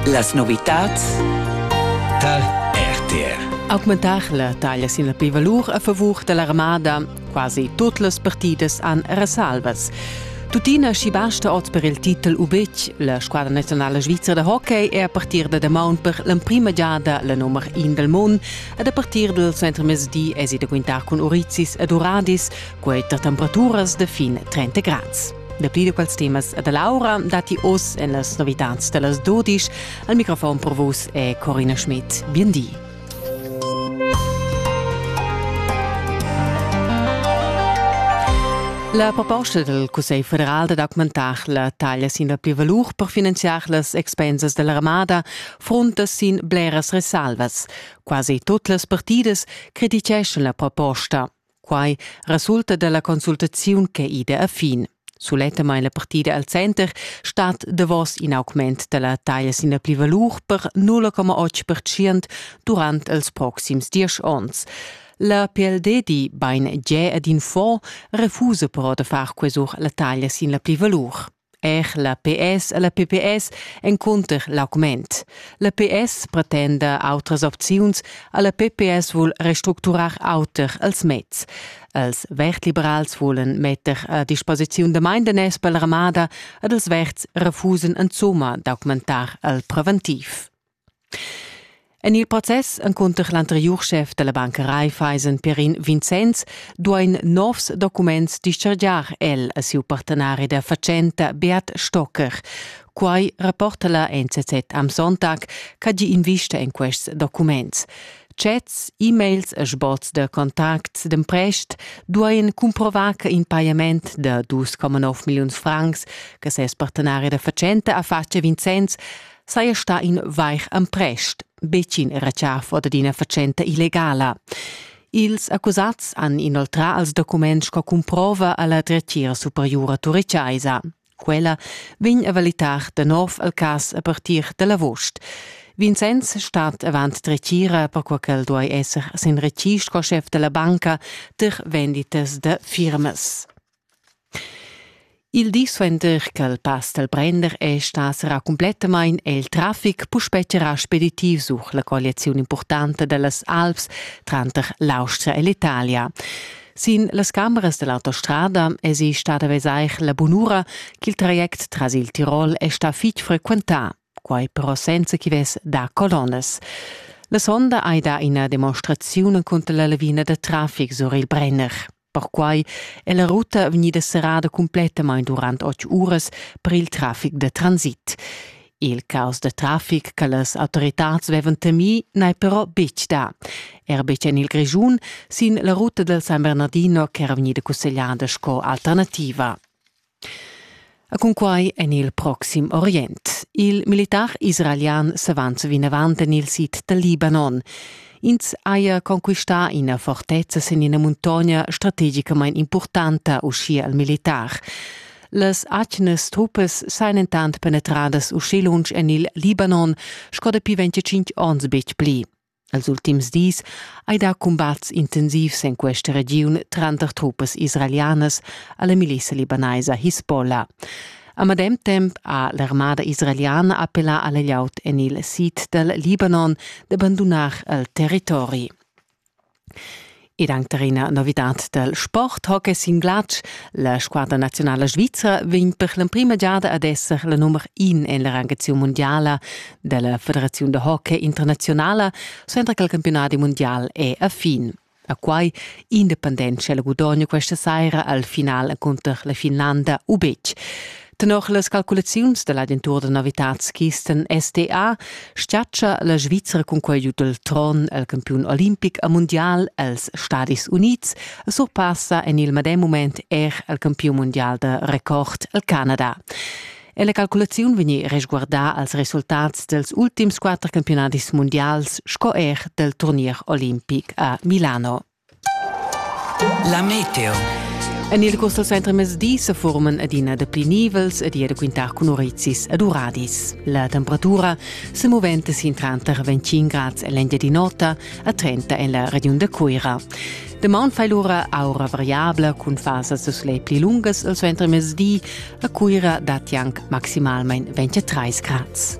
Las novitads tar RTR. Augmentar la taglia sin la plivalur a favur da l'armada. Quasi tut las partidas han resalvas. Tuttina schi basta oz per il titel u betg. La squadra nazionala svizra da hockey è a partir da damaun per l'emprima giada la nummer in del mund ed a partir dal centremezdi èsi da quintar cun Orizis ed Uradis, quai tar temperaturas da fin 30 grads. Dapi da quels temas da Laura datti oz en las novitads da las dodisch. Al microfon per vus è Corina Schmidt. Bien di. La proposta del Cussegl federal da documentar la taglia sin la plivalur per finanziar las expensas dell'armada fronta sin bleras resalvas. Quasi tutte le partite criticheschan la proposta. Quai resulta da la consultaziun ch'è ida a fin. Sulettamain la partida al center stat davos in augment da la taglia sin la plivalur per 0,8% durant els proxims diesch onns. La PLD di bain giè ad in fond refusa però da far quesur la taglia sin la plivalur. Er la PS e la PPS encunter l'augment. La PS pretenda autras opziuns, a la PPS vul restructurar auter els mezs. Els Vertliberals volen metter a disposiziun de Maindeness per l'armada ed els Verts refusen insomma d'augmentar el preventiv. En il process encunter l'anteriur schef da la Banca Raiffeisen Perin Vincenz duain novs documents dischargiar el a siu partenari da fatschenta Beat Stocker. Quai rapporta la NZZ am Sonntag ch'ha gi invista en quests documents. Chats, e-mails e sbots da contacts d'emprest duain cumprovar che in pajament da 2,9 milliuns francs che ses partenari da fatschenta ha fatg a Vincenz saja stà in vair emprest, betg in retschafa dad ina fatschenta illegala. Ils accusats han inoltrà als documents sco cumprova a la dretgira superiura turichaisa. Quella vegn a valitar de nov al cas a partir dal agost. Vincenz stat avant dretgira per qual quel duai esser sin recì sco chef della banca ter venditas de firmas. Il di suenter ch'el pass dal prender è stà serrà cumplettamain è il traffic puspè charrà speditiv sur la colliaziun impurtanta da las Alps tranter l'Austria e l'Italia. Sin las cameras da l'autostrada èsi stada vesair la bunura ch'il traject tras il Tirol è stà fitg frequentà, quai però senza ch'i vess dà colonnas. La sonda hai dà ina demonstraziun cunter la lavina da traffic sur il Brenner. Perquai è la ruta vegnida serrada cumplettamain durant otg uras per il traffic da transit. Il caos da traffic che las autoritads avevan temì n'è però betg stà. Er betg en il Grischun, sin la ruta dal San Bernardino ch'era vegnida cussegliada sco alternativa. E cunquai en il proxim Orient. Il militar israelian s'avant vinavant en il sid dal Libanon. Ins haja conquistà ina fortezza sin ina muntogna strategicamain impurtanta, uschia il militar. Las atgnas truppas sajan entant penetradas uschi lunsch en il Libanon sco dapi 25 onns betg pli. Els ultims dis hai dà cumbats intensivs en questa regiun tranter truppas israelianas a la milissa libanaisa Hisbollah. A medem temp ha l'armada israeliana appellà a layout en il sid dal Libanon d'abbandunar il territori. ed anc tar ina novitad dal sport, hockey sin glatsch. La squadra nazionala svizra vegn per l'emprima giada ad esser la nummer in en la rangaziun mundiala della Federaziun da hockey internazionala, suenter che il campionat mundial è a fin. A quai independent c'è il gudogno questa saira al final cunter la Finlanda u betg. Tenor las calculaziuns da l'agentura da novitads Kisten SDA stiatscha la Svizra cun quai giu dal tron al campiun olimpic a mundial als Stadis Unids e surpassa en il medem mument er al campiun mundial da record al Canada. E la calculaziun vegni resguardà als resultats dels ultims quatter campionadis mundials sco er del turnier olimpic a Milano. La meteo. En il Costa Center mezdi se forman adina da pli nivels ed da quintar cun orizis ed uradis. La temperatura se movente sin tranter 25 grad en l'Engiadin'Ota a 30 en la regiun de Cuira. Demaun fai l'ura aura variabla cun fasas de sole pli lungas al center mezdi. A Cuira datti anche maximalmente 23 grad.